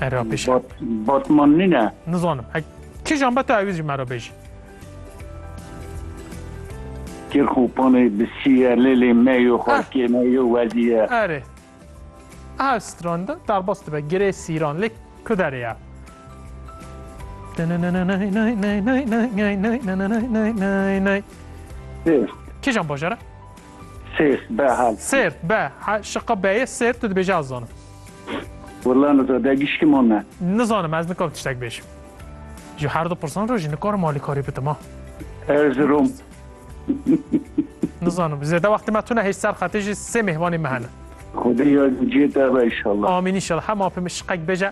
Era pêşe. Bat, Batman nine. Nizanim. Ek kijan be tu ewîz jî me re bêjî. Kirxopanê bi siye lêlê me yo xalkê me yo wezîye. Erê. Ev stran de derbas dibe girê sîran lê ku derê ye. Kijan bajara? Sêrt be hal. Sêrt be ha şiqa beyê sêrt tu dibêje ez zanim. Willa niza de gişkim o me. Nizanim ez nikam tiştek bêjim. Ji her du pirsan re jî nikarim alîkarî bidim ha. Erzurum. Nizanim zêde wextê me tune hêj ser xetê jî sê mêhvanê me hene. Xwedê yar cê te be inşallah. Amîn inşallah hema pê min şiqek bêje.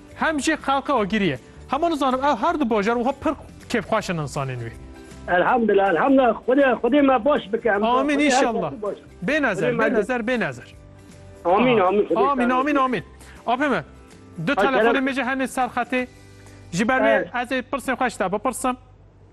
Hem jî xelka Ogirî ye. Hema nizanim ew herdu bajar wiha pir kêfxweş in insanên wî. Elhamdulillah elhamdulillah Xwedê Xwedê me baş bike em. Amîn înşallah bênezer bênezer bênezer. Amîn amîn amîn amîn amîn. Apê me du telefonê min jî hene ser xetê ji ber wê ez ê pirsên xwe ji te bipirsim.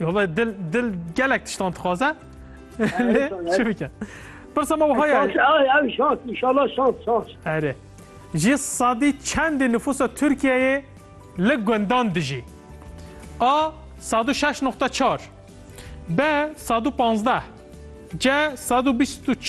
Yola dil dil gelek tiştan dixwaze. Çi bike? Pirsa me wiha ye. Ev şans, inşallah şans, şans. Erê. Ji sadî çendê nüfusa Tirkiyeyê li gundan dijî? A. Sadu şeş nokta çar. B. Sadu panzdeh. C. Sadu bîst û çar.